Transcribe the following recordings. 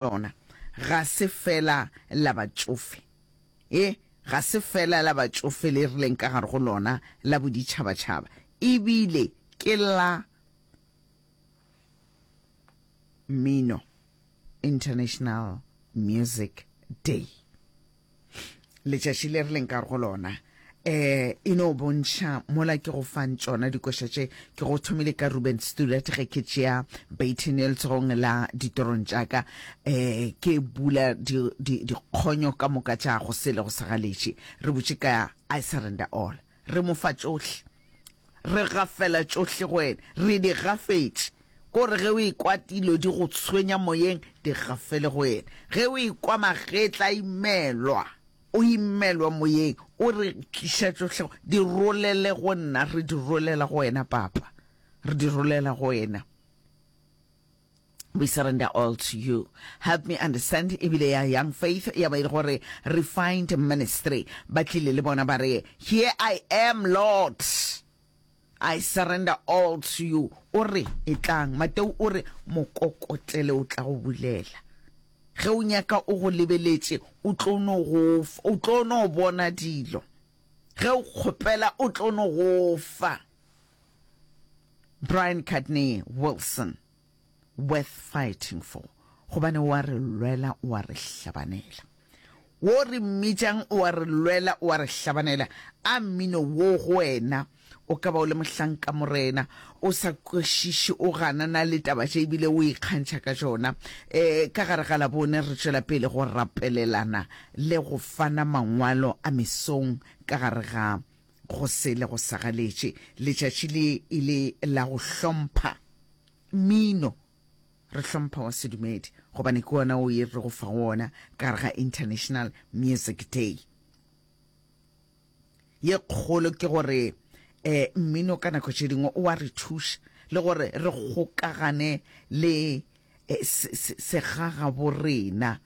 lona ga se feela la batšofe. E, ga se feela la batšofe le re leng ka gare go lona la boditšhabatšhaba, e bile ke la Mmino, International Music Day. letšatši le re leng ka go lona eh e no bontšha mola ke go fang tšona dikoša tše ke go thomile ka ruben stuart ge ke tšea baton e letsogong la ditorong tšaka eh ke bula dikgonyo ka moka tša go sele go segaletše re botše ka i surrender all Re mo fa tšohle. Re gafela tšohle go ene. Re di gafetše. Ko re ge o ekwa dilo di go tshwenya moyeng, di gafele go ene. Ge o ekwa magetla a imelwa, o imelwa moyeng, o re tliša tšohle go, di rolele go nna. Re di rolela go wena, Papa. Re di rolela go wena. We surrender all to you. Help me understand ebile ya young faith ya ba ile gore refined ministry ba tlile le bona ba re here I am Lord I surrender all to you o re e tlang Mateo o re mokokotlele o tla go bulela ge o nyaka o go lebeletše o tlo no go o tlo no bona dilo ge o kgopela o tlo no go fa Brian Cadney Wilson, Worth Fighting For, gobane o a re lwela, o a re hlabanela. Wo o re mmitšang, o a re lwela, o a re hlabanela. A mmino wo go wena o ka ba o le mohlanka morena, o sa kwešiše, o ganana le taba tše e bile o ikgantšha ka tšona. E, ka gare ga Labone re tšwela pele go rapelelana le go fana mangwalo a mesong ka gare ga Go sele go sa galetše, letšatši le e le la go hlompha mmino. Re hlompha wa sedumedi gobane ke ona o e re go fa wona ka gare ga International Music Day. Ye kgolo ke gore eh, mmino ka nako tše dingwe o wa re thuša le gore re kgokagane le eh, segagabo rena.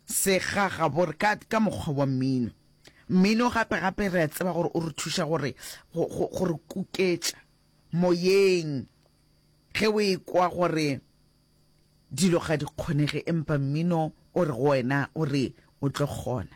Segagabore ka, ka mokgwa wa mmino. Mmino gape, gape re a tseba gore o re thuša gore, go, go, go re kuketša moyeng. Ge o e kwa gore dilo ga di kgonege, empa mmino o re go wena, o re o tlo kgona.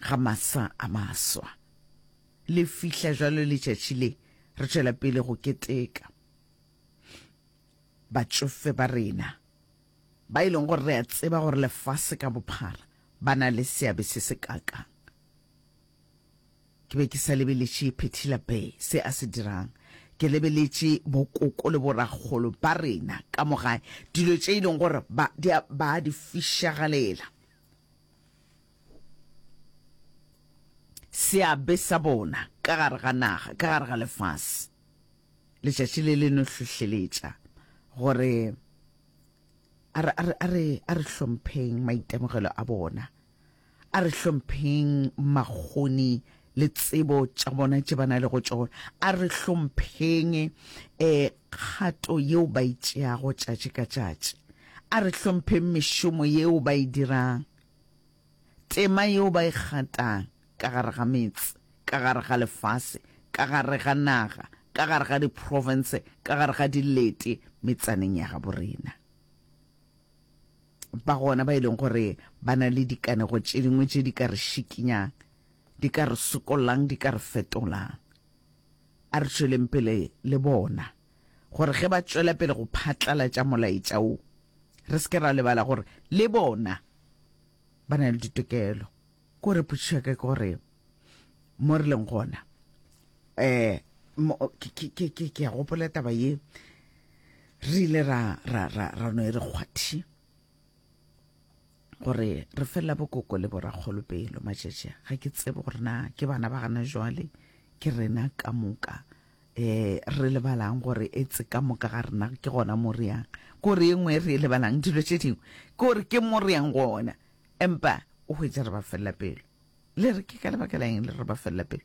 ga masa a maswa. Le fihla jwalo letšatši le, re tšwela pele go keteka. Batšofe ba rena, ba e leng gore re a tseba gore lefase ka bophara ba na le seabe se se kakang. Ke be ke sa lebeletše Phethila Bay se a se dirang, ke lebeletše bokoko le borakgolo ba rena ka mo gae, dilo tše e leng gore ba, ba a di fišagalela. seabe sa bona ka gare ga naga, ka gare ga lefase. Letšatši le le no hlohleletša gore a re, a re, a re, a re hlompheng maitemogelo a bona, a re hlompheng makgoni le tsebo tša bona tše ba na lego tšona. A re hlompheng um kgato yeo ba e tšeago tšatši ka tšatši. A re hlompheng mešomo yeo ba e dirang, tema yeo ba e gatang ka gare ga metse, ka gare ga lefase, ka gare ga naga, ka gare ga diprofense, ka gare ga dilete metsaneng ya gabo rena. Ba gona ba e leng gore ba na le dikanego tše dingwe tše di ka re šikinyang. di ka re sokollang, di ka re fetolang. A re tšweleng pele le bona gore ge ba tšwela pele go phatlalatša molaetša wo, re se ke ra lebala gore le bona ba na le ditokelo. Kore potšišo ya ka ke gore mo re leng gona um ke a gopola taba ye re ile ra no e re kgwathi. gore re fela bokoko le borakgolo pelo matšatši ga ke tsebe gore na ke bana ba gana jwale ke rena ka moka eh re lebalang gore etse ka moka ga rena ke gona mo re yang ko re engwe re e lebalang dilo tše dingwe ke gore ke mo re yang gona empa o hwetša re ba felela pelo le re ke ka lebaka la eng le re ba felela pelo